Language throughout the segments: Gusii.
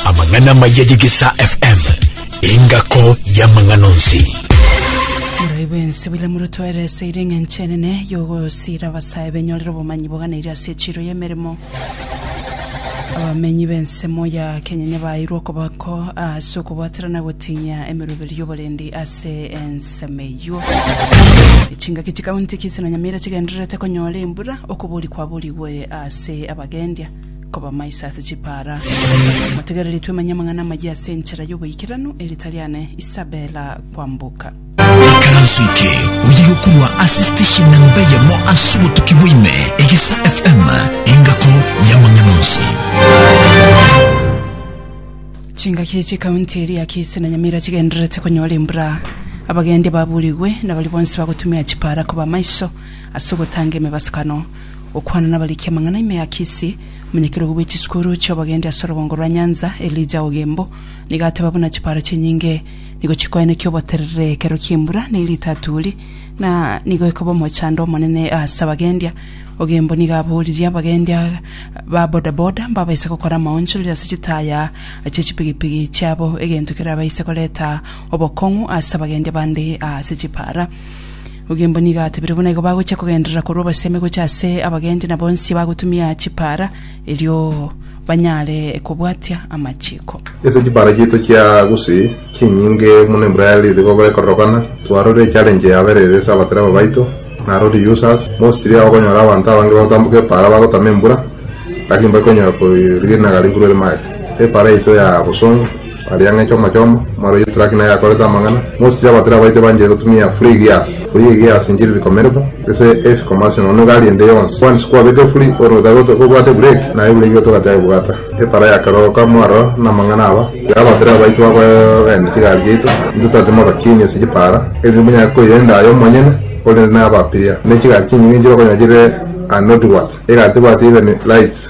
amang'ana amaya yegesa fm engako y'amang'ana onsi Murayi bwense bwile murutwerese ire eng'enche enene yogosira abasae benyorere obomanyi boganeire ase echiro y'emeremo abamenyi b'ensemo ya kenya bairwe okoboko ase okobwatera na gotinya emeroberi y'oborendi ase ense ensemo eyio. Chingaki chikaunti Kisii na Nyamira chigendererete konyora embura, okobori kwaborigwe ase abagendia kobamaisa ase chipara. Motegereri twemenye amang'ana amayia ase enchera y'oboikeranu eritariane Isabella kwamboka. Ikaranso eke oye gokorwa ase station namba eyemo ase obotuki bwaime egesa FM engako yamang'ana onsi. Chingaki chi'ekaunti eria ya Kisii na Nyamira chigendererete konyora embura, abagendi baburigwe na baria bonsi bagotumia chipara koba amaiso ase ogotanga emebasukano. Gokwana nabariki amang'ana ime ya Kisii, omonyakerogo bwe chisukuru chi'obogendi ase orogongo rwa Nyanza Elijah Ogembo nigo ateba buna chipara chinyinge nigo chikoenekia oboterere ekero ki'embura ne rita aturi na nigo ekoba omochando omonene ase abagendia Ogembo nigo aboririe abagendia ba bodaboda mbabaise gokora amaonchorero ase chitaya chie chipigipigi chiabo egento kerabaise koreta obokong'u ase abagendia bande ase chipara. Ogembo nigo atebirie buna igo bagochia kogenderera korwa obosemi gocha ase abagendia na bonsi bagotumia chipara. erio banyare kobwatia amachiiko. Ase chibara chiaito chia gose chinyinge muno Embraer igo bekororokana, twarorire echallenge yaberire ase abatereba baito na lorry users. Mostly okonyora abanto abange bagotamboka epaara bagotama embura, lakini mbari konyara korigia rinagari igoro rimagete. Epaara yaito ya bosongo. Aria ng'a echomo-chomo, omwaro oyio Traki naye akorete amang'ana, mosisiri abatera abaite banchire gotumia Phrygias, Phrygias inchire rikomerigwa, ase efikomasi nono iga aria ende yonsi. Boansi kwabeke Phry ore otagote kobwate Brake, naye Brake otogate aye bwata. Epara yakeroka mwaro namang'ana aba, iga abatera abaito bakoegena chigari chiaito, intwe totimoka kini ase chipara, erinde monyare koirenda aye omonyene ore nabapiria. Ne chigari chinyinge nchire okonyora chire anotiwat, egari tebwati even lights.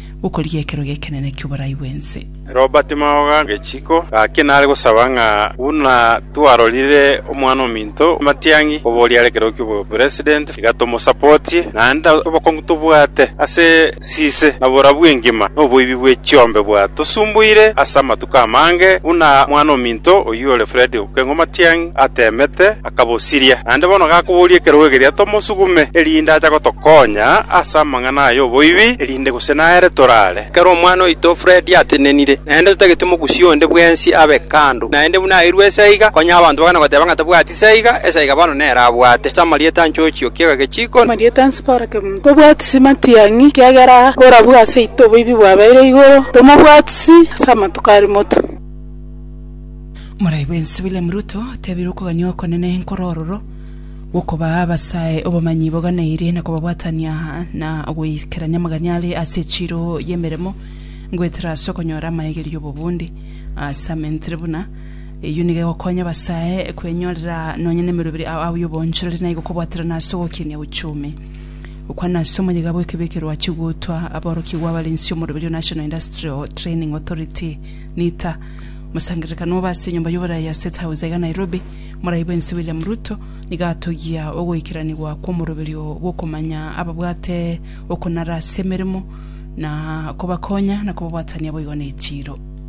gokorigia ekero gekenene ki'oborai bw'ense. Robert Maoga gechiko gaki nare gosaba ng'a buna twarorire omwana ominto Matiang'i koboria are ekerogo ki'obopresident iga tomosapotie, naende obokongu tobwate ase sise na borabu engima noboibi bwe chiombe bwatosumbuire ase amatuko aya. okamange buna Omwana-o-minto oyio ore Fredi okeng'wa matiang'i ateemete, akabosiria. Naende bono gakoboria ekerogo ekeria tomosugume, erinde acha gotokonya ase amang'ana aya oboibi, erinde gose nere torare. Ekero omwana oito Fredi atenenire, naende totagete mogusia onde bwensi abe kando, naende buna airwe ase aiga, konya abanto bagana goteba ng'a tabwati ase aiga, ase aiga bono nere abwate. Ase amarieta 'nchochi okiaga gechiko, Amarieta 'nsibara Ntobwatisi matiang'i, ekiagera borabu aseito oboibi bwabeire igoro, tomobwatisi ase amatuko a rimotu. Morai bwensi William Ruto otebire okogania okonene nkore ororo gw'okobaa abasae obomanyi boganeirie na kobabwatania na goikerania amaganya are ase echiro y'emeremo ngoetera ase okonyora amaegerio 'obobundi ase amentere buna Eyio nigo egokonya abasae kwenyorera nonya nemeroberi ao ao y'obonchoreri na igo kobwaterana ase ogokinia uchumi. Gokwana ase omoyega bw'ekebeyo eke rwachigutwa, aborokigwa abarensi omoroberi o National Industrial Training Authority, NITA, Mosangererekano obo ase enyomba y'oborai ya State House iga Nairobi, Morai bwensi William Ruto, nigo atogia ogoikeranigwa kw'omoroberi oo bw'okomanya ababwate okonara ase emeremo na kobakonya na kobabwatania boigo nechiiro.